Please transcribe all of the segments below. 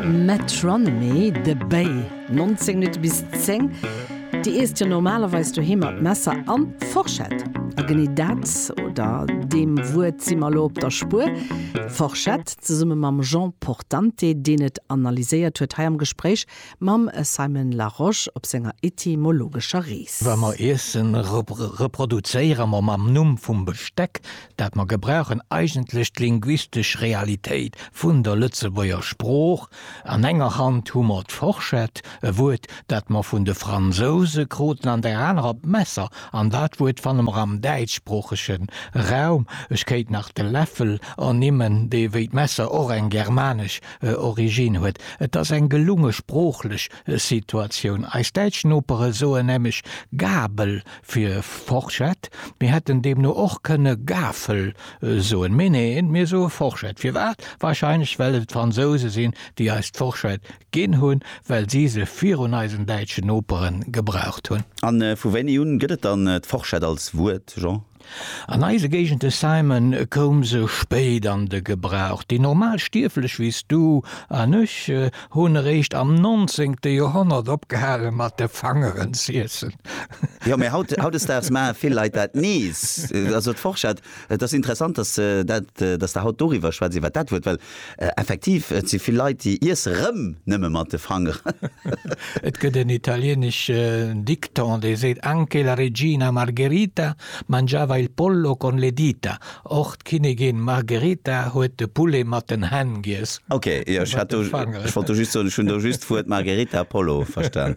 Metronomy, de Béi, 19 Minutte bis 10. Dir iesst jo normalerweis doheem mat Messer an Forschett. A genee dat, oder deem Wuert si mer elo op der Spuer, Forschett, zesumme mam Jean Portante, deen et analyséiert huet, hei am Gespréich mam Simon Larosche op senger etymologescher Rees. Wa mer Iessen reproduzéiere mer mam Numm vum Besteck, dat mer gebrauchen eigentlech d'linguistesch Realitéit vun der Lëtzebuerger Sprooch, an enger Hand hu mer d'Forschett, e Wuert, dat mer vun de Fransouse kruten, an der anerer d'Messer, an dat Wuert fanne mer am däitschsproochege Raum. Ech kéint nach de Läffel ernimmen, dee wéi d'Messer och eng germanesch Origine huet. Et ass eng gelunge sproochlech Situatioun. Eis däitsch Nopere soen nämlech Gabel Fir Forschett, mir hätten deemno och kënne Gafel soen, mee neen, mir soe Forschett. Firwat? Warscheinlech well et d'Fransouse sinn, déi eis d'Forschett ginn hunn, well si se virun eisen däitschen Nopere gebraucht hunn. A vu wéini un gëtt et dann d'Forschett als Wuert, Jean? An eise Géigende, Simon, koum se spéit an de Gebrauch. Déi normal Stierflech wéi s du an ech, hunn eréischt am nonzéngte Joerhonnert opgehale mat de Fangeren z'iessen. Jo, mee haut, hautdesdaags maache vill Leit dat nees. Also d'Forschett, et ass interessant, dass se dat, dass Der haut doriwwer schwätzt, iwwert dat Wuert, well effektiv, et si vill Leit, déi iesse rëm nëmme mat de Fangeren. Et gëtt en italieneschen Dikton, dee seet, Anche la regina Margherita mangiava il pollo con le dita, Och d'Kinnigin Margerita huet de Poulet mat den Hänn giess. Ok, jo, ech hat do, ech wollt do just soen, ech hunn do just d'Wuert Margerita Apollo verstan.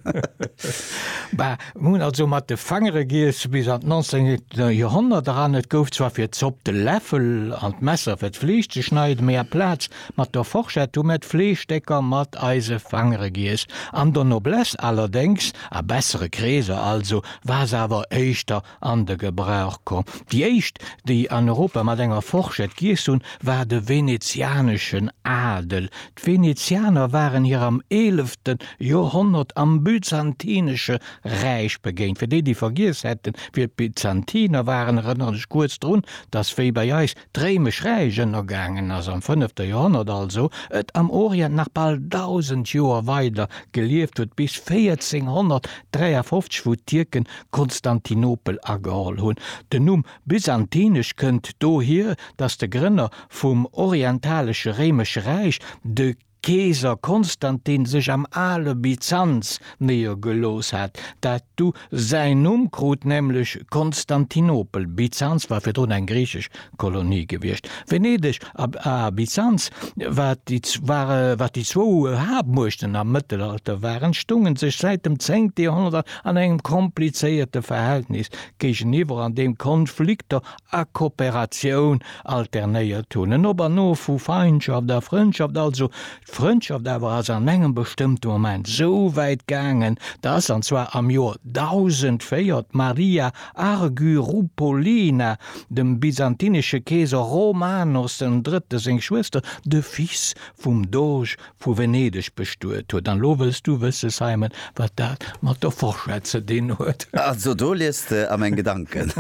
Bah, hunn also mat de Fangere giess bis an d'nonzéngent Joerhonnert eran. Et gouf zwar fir d'Zopp de Läffel an d'Messer fir d'Fleesch ze schneiden, mee aplaz mat der Forschett hu mir d'Fleeschstécker mat eise Fangere giess. An der Noblesse allerdéngs, a bessere Kreeser also, war se awer éischter an de Gebrauch komm. Déi éischt, déi an Europa mat enger Forschett giess hunn, war de venezianeschen Adel. D'Venezianer waren hir am eelefte Joerhonnert am Byzantinesche Räich begéint. Fir déi, déi vergiess hätten, wie d'Byzantiner waren, erënneren ech kuerz drun, dass wéi bei eis Dréi mech räich ënnergaangen ass am fënnefte Joerhonnert, also et am Orient nach bal dausend Joer weider gelieft huet, bis 1453, wou d'Tierken Konstantinopel ageholl hunn. Den Numm Byzantinesch kënnt dohier, datt de Grënner vum orientalesche Réimesche Räich, de. Keeser Konstantin sech am ale Byzanz néiergelooss hat, dat du säin Numm krut, nämlech Konstantinopel. Byzanz war virdrun eng griichesch Kolonie gewiescht. Venedeg a Byzanz, wat déi zwou Haaptmuechten am Mëttelalter waren, stounge sech säit dem zéngte Joerhonnert an an engem komplizéierte Verhältnis géigeniwwer, an deem Konflikter a Kooperatioun alternéiert hunn, en Op an Of vu Feindschaft a Frëndschaft, also d'Frëndschaft awer ass an engem bestëmmte Moment esou wäit gaangen, dass, an zwar am Joer 1004, d'Maria Argyroupolina dem byzantinesche Keeser Romanos den Drëtte seng Schwëster, de Fils vum Doge Vu Venedeg bestuet huet. An lo wëlls du wësse, Simon, wat dat mat der Fourchette ze dinn huet? Also, do liest de a meng Gedanken.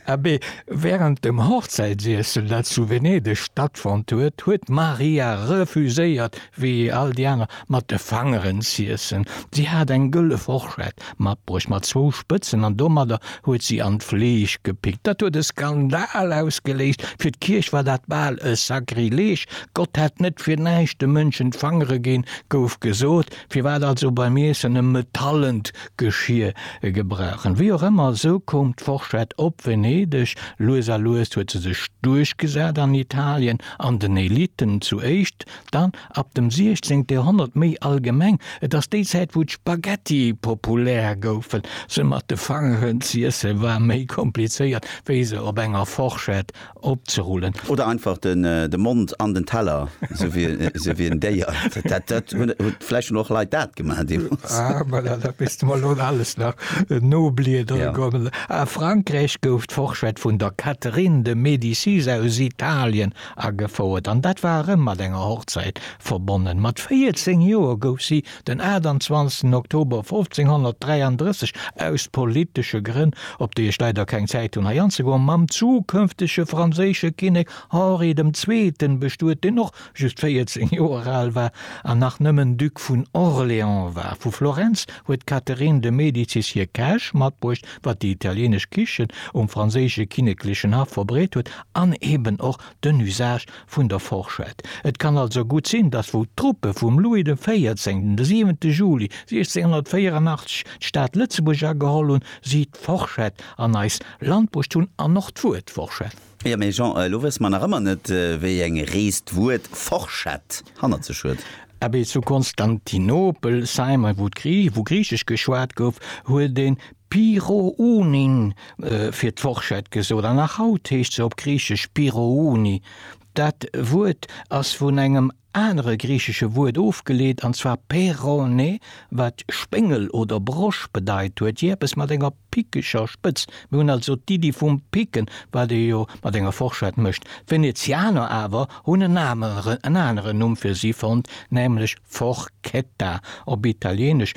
Abee, wärend dem Hochzäitsiessel, dat zu Venedeg stattfonnt huet, huet d'Maria refuséiert, wéi all déi aner, mat de Fangeren z'iessen. Si hat eng gëlle Fourchette, Mat bruecht mat zwou Spëtzen an domadder huet si an d'Fleesch gepickt. Dat huet e Skandal ausgeléist, fir d'Kierch war dat bal e Sakrileg, Gott hätt net fir näischt de Mënschen d'Fangere ginn, gouf gesot. Firwat also beim Iessen e metallent Geschier gebrauchen? Wéi och ëmmer, esou koum d'Forschett op Venedeg. Lues a lues huet se sech duerchgesat an Italien an den Elitten zu éischt, dann Ab dem 16. Joerhonnert méi allgemeng, et ass déi Zäit wou d'Spaghetti populär goufen. Se mat de Fangeren z'iesse war méi komplizéiert wéi se op enger Forschett opzerullen. Oder einfach de Mond an den Teller, sou wéi en Déier. Dat hunn vläicht schon och Leit dat gemaach deemools. Ah voilà, da misst de mer elo alles nach nobliedere goen. A Frankräich gouf d'Forschett vun der Catherine de Médicis aus Italien Agefouert, an dat war erëm mat enger Hochzäit verbonnen. Mat 14 Joer gouf si den 28 Oktober 1533 aus politesche Grënn, op déi ech leider keng Zäit hunn hei anzegoen, mam zukënftege franséische Kinnek Henri dem Zweeten bestuet, deen och just 14 Joer al war an nach nëmmen Duc vun Orléans war. Vu Florenz huet d'Catherine de Medicis hir Käch matbruecht, wat déi italienesch Kichen um franséische kinneklechen Haff verbreet huet, An eben och den Usage vun der Forschett. Et kann also gutt sinn, datt wou d'Truppe vum Louis de Véierzéngten de 7. Juli 1684 d'Stad Lëtzebuerg ageholl hunn, si d'Forschett an eist Land bruecht hunn an och d'Wuert Forschett. Jo, mee Jean, elo wësse mer nach ëmmer net, wéi eng Rees d'Wuert Forschett hannert sech huet. Abee, zu Konstantinopel, Simon, wou Griichesch geschwat gouf, huet ee Pyrrhou'nin fir d'Forschett gesot, an nach haut heescht se op Griichesch Pyrrhou'ni. Dat Wuert ass vun engem anere griichesche Wuert ofgeleet, an zwar pei'rone, wat Spéngel oder Brosch bedeit huet, jee eppes mat enger pickeger Spëtz. Mir hunn also d'Iddi vum Picken, wat ee jo mat enger Forschett mécht. D'Venezianer awer hunn en aneren Numm fir si fonnt, nämlech Forchetta, op Italieenesch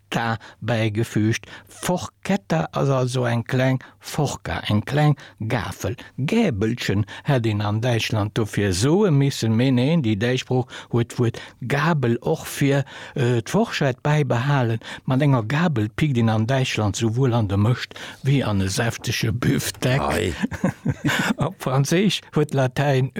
ta bäigefüügt. Forchetta ass also eng kleng Forca, eng kleng Gafel. Gäbelchen hätt een an Däitschland dofir soe missen, mee neen, déi däitsch Sprooch huet d'Wuert Gabel och fir d'Forschett bäibehalen. Mat enger Gabel pickt een an Däitschland souwuel an de Mëscht wéi an e säftege Büfteck. Op Franséisch huet d'Latäin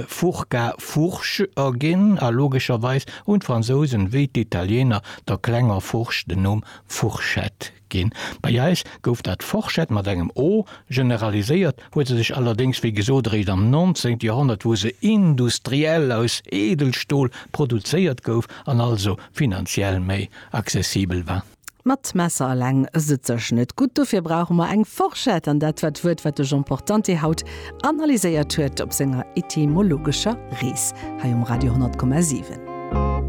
furca, Fourche erginn a logescherweis hunn d'Fransousen, wéi d'Italieener, der klenger Furch den Numm Fourchette ginn. Bei eis gouf dat Forschett mat engem o generaliséiert, huet se sech allerdéngs wéi gesot eréischt am 19. Joerhonnert, wou se industriell aus Eedelstol produzéiert gouf an also finanziell méi accessibel war. Mat Messer eleng sëtzt sech net gutt, dofir brauche mer eng Forschett an dat war d'Wuert, wat de Jean Portante haut analyséiert huet op senger etymologescher Rees hei um Radio 10,7.